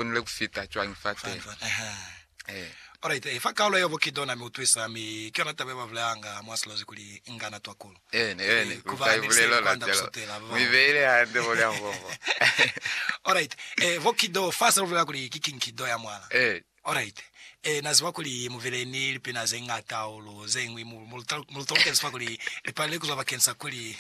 konile ku fita cwañi fa teñi? Eehe. Alright, fa kaalo ya bukito na mi utwisa, mi ki yona taba ye ba bulelanga mwa Silozi kuli, Nga na twa kulu. Ene, ene, ku fa lipulelo la calo. Mu ibeile hande mo lya mbobo. Alright, eh, bukito, fa sa lu bulela kuli ki kinkido ya mwala. Eh. Alright. Eh, na ziba kuli mu bile ni lipina ze ñata hahulu, ze ñwi, mu, mu lu ta, mu lu talukezi fa kuli li palile ku zwa bakeni sa kuli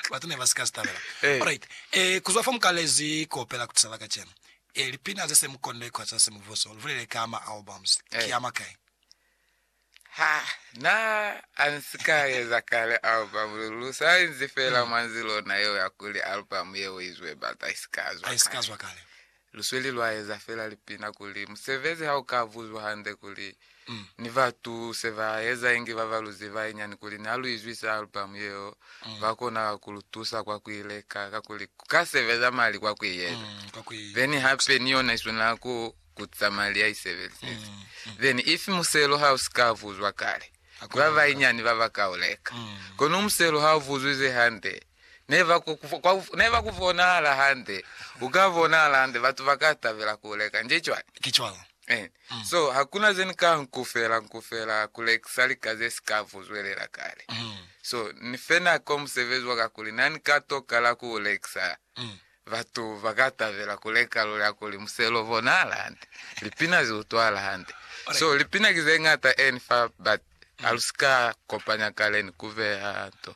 batu ne ba si ka zi tabela. Eh. Alright, eh, ku zwa fa mu kalezi ku opela ku tisa la kacenu, E, lipina ze se mu konne kwa za Semubuso, lu bulele ka ma albums. Eh. Ki a makai? Ha na a nsi ka eza kale album, lu, lu sa inzi fela Hmm. mwa nzi lona yeo ya kuli album yeo i zwe batu a i si ka A zwa i si ka kale. zwa kale. Lu sweli lwa eza fela lipina kuli musebezi ha u ka buzwa hande kuli ni batu se ba eza inge ba ba lu ziba inyani kuli ni ha lu izwisa alubamu yeo, ba kona ku lu tusa kwa ku i leka kakuli ku ka sebeza mali kwa ku i eza. Then hape ni yona i swanela ku kuza mali ya i sebezezi. Then if muselo ha u si ka vuzwa kale, ki ba ba inyani ba ba ka u leka. Kono muselo ha u vuzwize hande, ne ba ku, kwa, ne ba ku bonahala hande, u ka bonahala hande, batu ba ka tabela ku u leka. Nje cwani? Ki cwalo. Eh. Mm. So hakuna zeni ka nkufela nkufela kulekisa lika ze sika vuzwelela kale. Mm. So ni fena ko musebezi wa kakuli nani ka tokala ku lekisa Mm. batu bakatabela kuleka lula kuli muselo bona alande lipina zi utwala hande so lipina ki ze ngata eni fa but alusika kopanya kale ni kubeha to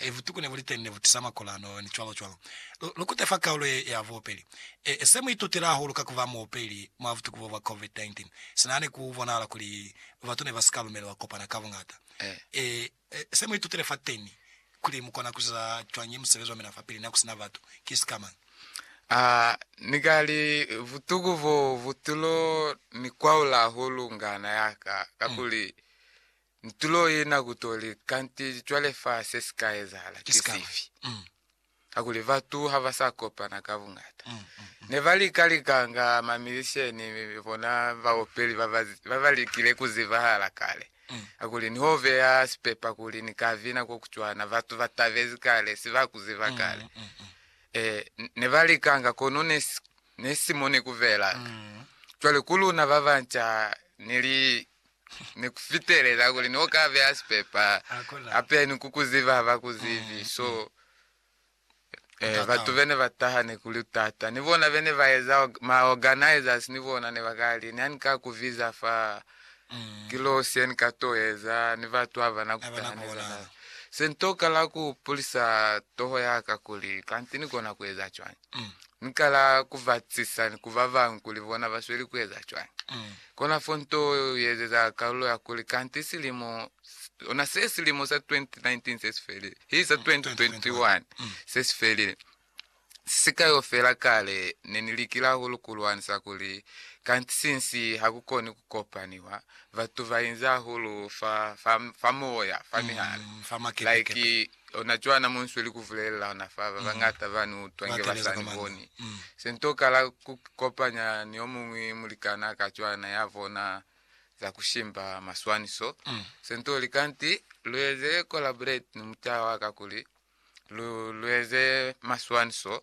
e butuku ne bu li teñi ne bu tisa makolano, ni cwalo cwalo. Lu, lu kute fa kaulo ye, ya buopeli. E, se mu itutile hahulu ka ku ba muopeli mwa butuku bo bwa COVID-19, sina ne ku bonahala kuli batu ne ba si ka lumelelwa kopana ka buñata. E, e, se mu itutile fateñi, kuli mu kona ku ziza cwañi musebezi wa mina fapili na ku sina batu, ki sika mañi? A, ni ka li, butuku boo bu tilo ni kwaula hahulu ngana ya ka, kakuli Ntulo ye na kutoli, kanti cwale fa se si ka ezahala ki sifi? Kakuli batu ha ba sa kopana ka bungata. Ne ba lika likanga, mamizisheni, bona baopeli ba ba, ba ba likile ku zibahala kale. Kakuli ni ho beya sipepa kuli ni ka bina ko ku cwana, batu ba tabezi kale, si ba ku ziba kale. Ee, ne ba likanga, kono ne si, ne si mo ne ku belanga. Cwale ku luna ba banca, ni li, ni ku fitelela kuli ni oka beha sipepa hape ni ku ku ziba ha ba ku zibi. Mm, so mm. Eh, batu bene ba taha ne kuli utata ni bona bene ba eza ma organizers ni bona ne bakali ni ani ka kuviza fa mm. kilosi ni ka to eza ni batu aba na kutaha ne zana sentoka la ku pulisa toho ya ka kuli kanti ni kona ku eza chwani Ni kala ku batisisa ni ku babañwi kuli bona ba sweli ku eza cwañi. Kona fo nto ye ezeza kalulo ya kuli, Kanti silimo, ona se silimo sa 2019 se si felile, hi sa 2021 se si felile. Si ka yo fela kale ne ni likile hahulu ku lwanisa kuli, kanti sinsi ha ku koni ku kopaniwa, batu ba inzi hahulu fa, fa, fa moya, fa mihali, like Ona cwana mo nsweli ku vulelelana fa ba bañata ba ni utwa inge ba sa ni boni. Se ni tokala ku ikopanya ni yo muñwi mulikanaa ka cwana ya bona za ku shimba maswaniso. Se ni to lika niti, Lu eze collaborate ni mucaha wa ka kuli lu eze maswaniso.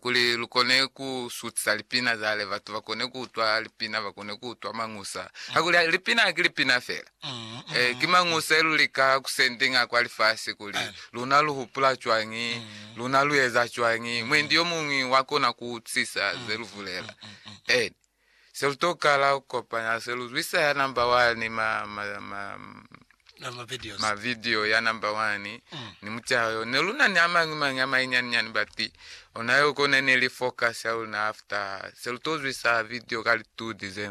kuli lu kone ku sutisa lipina zale batu ba kone ku utwa lipina ba kone ku utwa mangusa ha kuli ha- lipina ha ki lipina fela Mm, eh, mm, ki mangusa lu lika ku sending a kwa lifasi kuli Eh. luna lu hupula cwangi Mm. luna lu eza cwangi mwendi yo mungwi wa kona ku utsisa ze lu bulela Mm, mm, mm. eh Se lu tokala ku kopanya se lu zwisa ya number wani ma, ma, ma, Na ma videos. ma video ya number wani Mm. ni mucaha yo. Ne lu na ni a mañi mañi a mainyaninyani but ona yo kone ne li focus ya luna after se lu to zwisa video ka li 2 December.